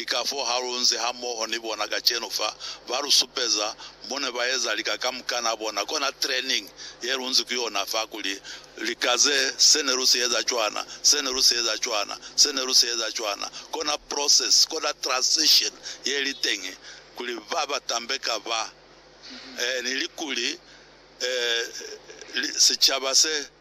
Ki kafoo ha lu nzi hamoho ni bona kacenu fa, ba lu supeza mo ne ba eza lika kamukana bona, kona training ye lu nzi ku yona fa, kuli, Lika ze, se ne lu si eza cwana, se ne lu si eza cwana, se ne lu si eza cwana. Kona process, kona transition ye li teñi, kuli ba ba tambeka ba, eh, ni likuli, eh, li, sicaba se.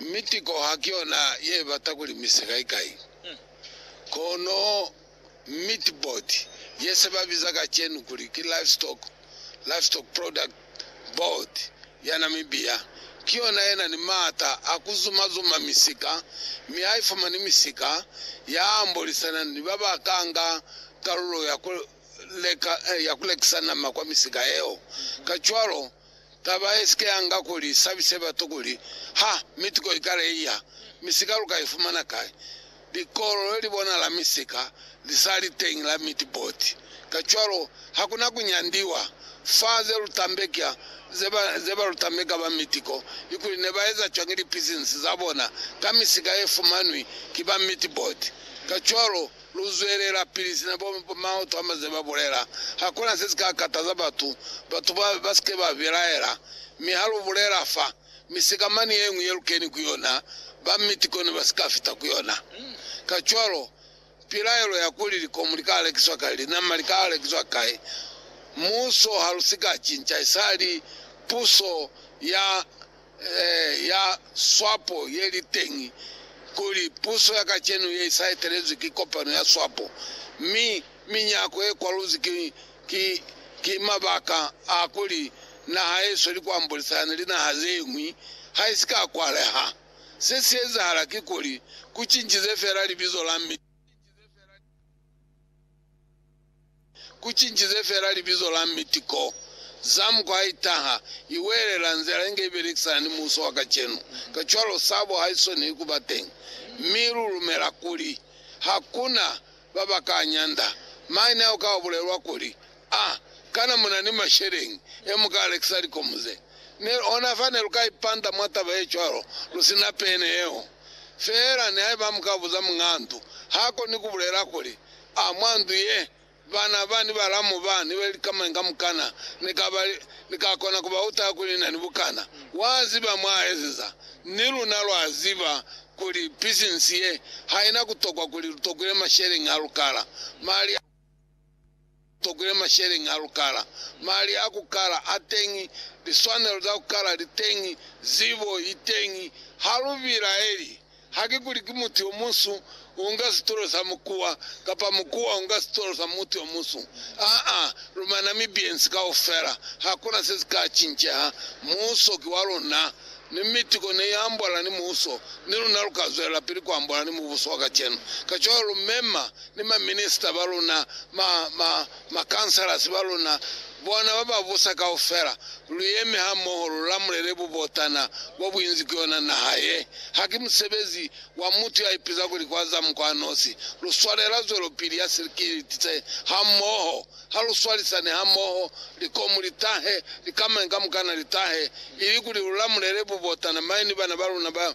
Mi tiko ha ki yona ye bata kuli mi sikai-kai. Kono Meatboard, ye se ba biza kacenu kuli ki Livestock, Livestock Product, Board ya Namibia, ki yona ye na ni maata a ku zuma-zuma misika, mi ha i fumani misika ya ambolisana ni ba ba ka nga kalulo ya ku leka, ya ku lekisa nama kwa misika yeo. Kacwalo, Taba ye si ke ya nga ku li sabise batu ku li, Ha, mituko i kale i ya, mi sika lu ka i fumana kai? Likolo le li bonala mi sika li sa li teñi la mitiboti. Kacwalo, ha ku na ku nyandiwa fa ze lu tambeka, ze ba, ze ba lu tambeka ba mitiko, i kuli ne ba eza cwañi lipisinisi za bona ka misika ye fumanwi ki ba mitiboti. Kacwalo, Luzwelelapili sina bo maoto a maze ba bulela. Hakuna se si ka kataza batu, batu ba, ba si ke ba belaela. Mi ha lu bulela fa, mi sikamani ye ñwi ye lu keni ku yona, ba miti kono ba si ka fita ku yona. Kacwalo, pilaelo ya kuli likomu li ka lekiswa kai, linama li ka lekiswa kai, muso ha lu si ka cinca, isali puso ya. ya swapo ye li teñi kuli puso ya kacenu ye i sa etelezwi ki kopano ya swapo, mi minyako ye kwaluzwi ki, ki, ki mabaka a kuli naha ye sweli ku ambolisana ni linaha ze ñwi ha i si ka kwaleha. Se si ezahala kikuli, ku cincize fela libizo la mi. Ku cincize fela libizo la miti ko. Zam kwa i taha, i welela nzila inge i belekisana ni muuso wa kacenu. Kacwalo sabo ha i soniwi ku ba teñi. Mi lu lumela kuli ha ku na ba ba ka nyanda maine ao ka bulelwa kuli, A kana mu na ni masheleñi e mu ka lekisa likomu ze? Ne, ona fa ne lu ka ipanta mwa taba ye cwalo lu si na pene yeo. Fela nihaiba mu ka buza muñaa ndu, ha koni ku bulela kuli, A mwa ndu ye, bana ba ni balamu ba ni ba li ka mañi kamukana, ni ka ba, ni ka kona ku ba utala kuli na ni bukana. Wa ziba mwa ezeza. Ni luna lwa ziba kuli pisinsi ye ha ina ku tokwa kuli lu tokwile masheleñi a lukala, mali a tokwile masheleñi a lukala, mali a ku kala a teñi, liswanelo za ku kala li teñi, zibo i teñi. Ha lu bilaeli. Haki kuli ki mutu yo munsu unga situlo sa mukuwa, kapa mukuwa unga situlo sa mutu yo munsu. Aa, luma Namibians kaufela, hakuna se si ka cinceha. Muuso ki wa luna, mi mitiko ne i ambola ni muuso, ni luna lu ka zwelapili ku ambola ni mubuso wa kacenu. Kacwalo lu mema ni ma minister ba luna, ma, ma, Makhansalasi ba luna, bona ba ba busa kaufela, lu yeme ha moho lu lamulele bubotana bo buinzi ku yona naha ye. Ha ki musebezi wa mutu ya ipiza kuli kwa za mukwa nosi. Lu swalela zwelopili ya silikiliti se ha moho. Ha lu swalisane ha moho, likomu li tahe, likamañi kamukana li tahe, ili kuli lu lamulele bubotana mañi ni bana ba luna ba.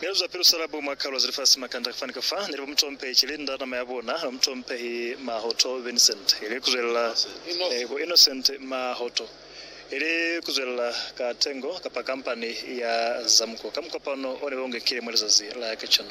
Milalu za pilu salabu mwa kaluwa za lifasi makanda fani ka fa, neli ba mutompehi Cilinda, nama ya bona, ba mutompehi Mahoto Vincent, ili kuzwelela eh, bo Innocent Mahoto, ili kuzwelela ka tengo kapa kampani ya Zamuko, ka mukopano one ba ungekile mwa lizazi la kacenu.